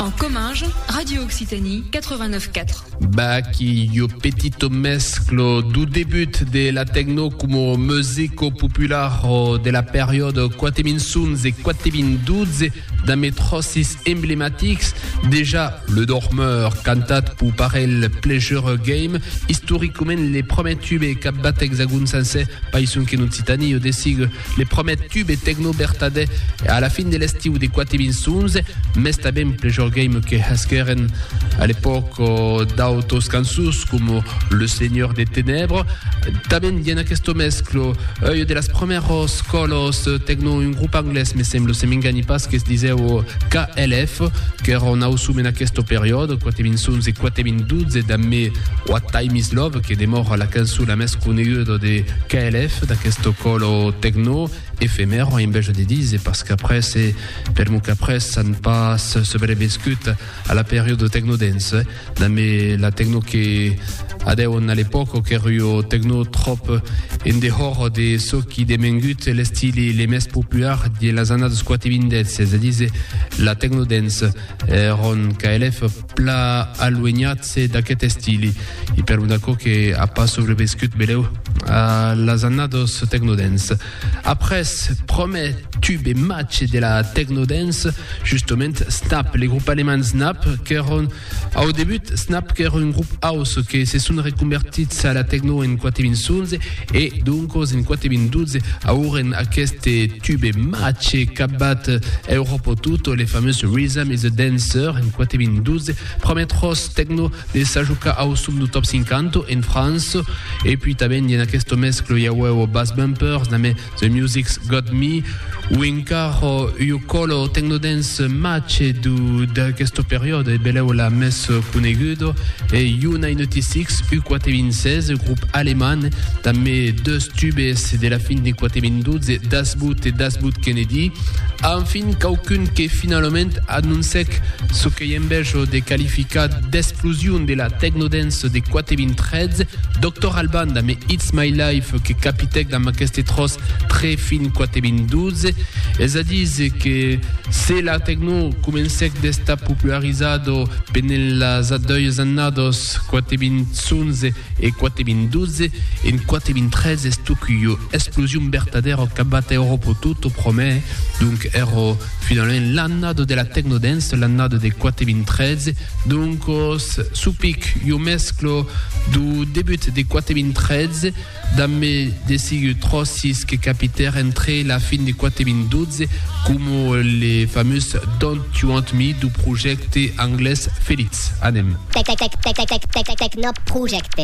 En Comminges, Radio Occitanie 89.4. Baky, yo petito mesclo du debut de la techno como musico popular de la periòde 4011 e 4012 d'un metròsis emblematics, dejà Le Dormeur, cantat pau parelh Pleasure Game, istoricament le prumèr tube cap bat exagon sencer, païson qu'en Occitanie o desigue Le promèt tube tecno bertadè a la fin de l'estiu de 4.011, mès tanben plejor game que hesquèren a l'epòc d'autos cançons coma Le Seigneur des Ténèbres. Tanben i en aquesto mesclo ui de las promèros còlos tecno, un grup anglés me semblo, se m'enganhi pas, que se disèu KLF, qu'èra un ausum en aquesto periòde, 4.011 e 4.012 damb me What Time Is Love, que demòra la cançon la mès conegudo de KLF, d'aquesto colo tecno efemèro, en bèja de dise, parce qu'après se permu qu'après s'an pas sobreviscut a la periodo tecno dance, dambe la tecno que adèon a l'epòca, qu'èri o tecno tròp en dehòra de çò qui demengut l'estili le mès popuar dins las annadas 4 e 20 del siègle, es a dise, la tecno dance. Ron KLF. pla aluenhat-se d'aqueth estili e per un aquò que a pas sobrevescut belèu a las annados tecnodance. Après promè tube e matge de la tecnodance, justement, Snap, le grup alemand Snap, qu'èron au debut Snap qu'èra un grup house que se son reconvertits a la tecno en 4 vinçons, E doncos en quate vint dotze auren aqueste tube mache cabat Europo Tutto, le fameux Rhythm is a Dancer, en quate vint dotze, prumèr tròç tecno de s'ajocar au som du Top 50 en França. E pui tanben en aqueste mesclo i aueu Bass Bumpers, na mè The Music's Got Me, o encara ua còlo tecnodance mache du d'aquesta periòda e belèu la mès coneguda e Juna in ëti six u quate mil sèis, e grop aleman dambe deus tubes de la fin de quate mil dotze Das Boot e Das Boot Kennedy, a enfin quauqu'un que finalament anoncèc çò Qu'ei en bèth de qualificar d'explosion de la technodance de quate vint trètz, Doctor Alban damb It's My Life que capitèc damb aqueste tròç tre fin quate vint dotze. Es a díser que se la techno comencèc d'estar popularizada pendent las doies annadas quate vint onze e quate vint dotze, en quate vint trètz es toc ua explosion vertadèra qu'abat Euròpa tota promè, donc era Finalament l'annada de la techno dance, l'annada de 4013, doncos su pic jo mesclo du debut de 4013 damb me desigu tròcis que capitèr entre la fin de 4012 coma le famós Don't You Want Me du projècte anglés Felix. Anem. Technoprojecte.